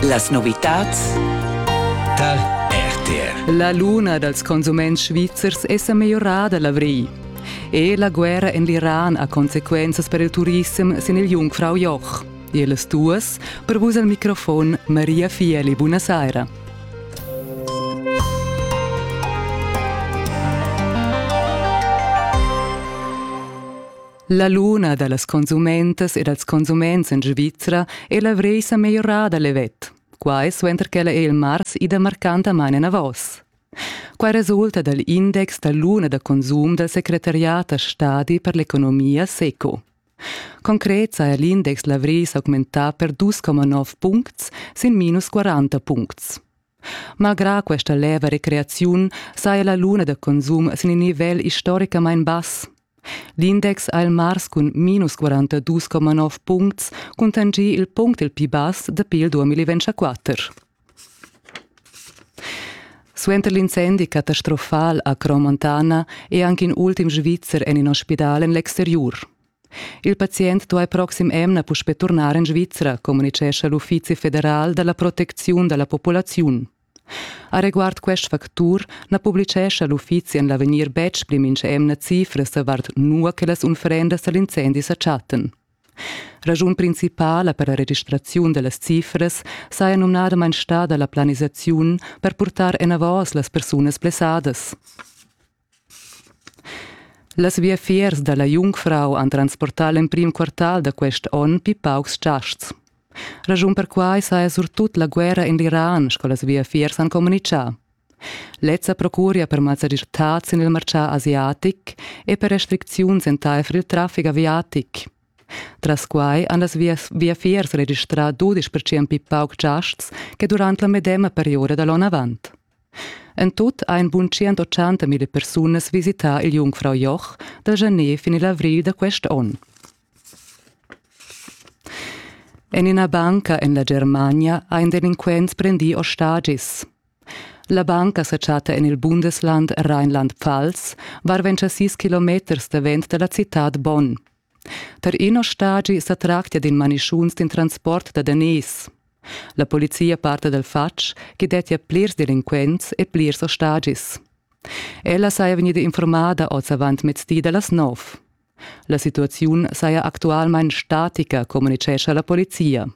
Las novitads tar RTR. La luna dals consuments svizzers è sa migliorada l'avrigl. E la guerra en l'Iran ha consequenzas per il turissem sin il Jungfrau Joch. Ellas duas, per vus al microfon Maria Fieli. Buonasera. La luna da las consumentas e dals consuments en Svizra è la vresa meglierada levet. Quai suenter ch'ella è il mars ida marcantamain enavos. Quai resulta dal index da luna da consum dal secretariat da stadi per l'economia SECO. Concret saja l'index Lavris augmentà per 2,9 puncts sin minus 40 puncts. Malgrà questa leva recreaziun saja la luna da consum sin in nivel istoricamain bass. L'index ha il mars cun minus 42,9 puncts cuntanschì il punct il pli bass dapi il 2024. Suenter l'incendi catastrofal a Cromontana è anche in ultim Svizzer en in ospidal en l'exteriur. Il pazient duai proxim emna puspè turnar en Svizra, communitgescha l'Uffizi federal da la protecziun da la populaziun. Areguard quest factur na publitgescha l'uffizi en l'avegnir betg pli mintg'emna cifras davart nua che las unfrendas da l'incendi sa chattan. Raschun principala per la registraziun da las cifras saja numnadamain stada la planisaziun per purtar enavos las persunas blessadas. Las viafiers dalla Jungfrau han transportà l'emprim quartal da quest onn pli paucs giasts. Raschun per quai saja surtut la guerra en l'Iran, sco las viafiers han communitgà. Lezza procuria per mazzadirtads sin il martgà asiatic e per restricziuns entaifer il traffic aviatic. Tras quai han las viafiers registrà dudisch percent pli pauc giasts che durant la medema perioda da l'onn avant. En tut ein bun tschient mille persunas visità il jungfrau Joch da Gener fin il avril da quest onn. En ina banca en la Germania ha in delinquent prendì ostagis. La banca sa chatta en il Bundesland Rheinland-Pfalz, varven sis kilometers davent da la citad Bonn. Tar ina stagi sa tractia d'in manischunz d'in transport da daners. La polizia parta dal fatg ch'i dettia plirs delinquents e plirs ostagis. Ella saja vegnida informada oz avant mezdi da las nov. La situaziun saja actualmain statica, communitgescha la polizia.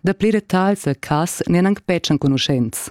Da pli detagls a cas n'èn anc betg enconuschents.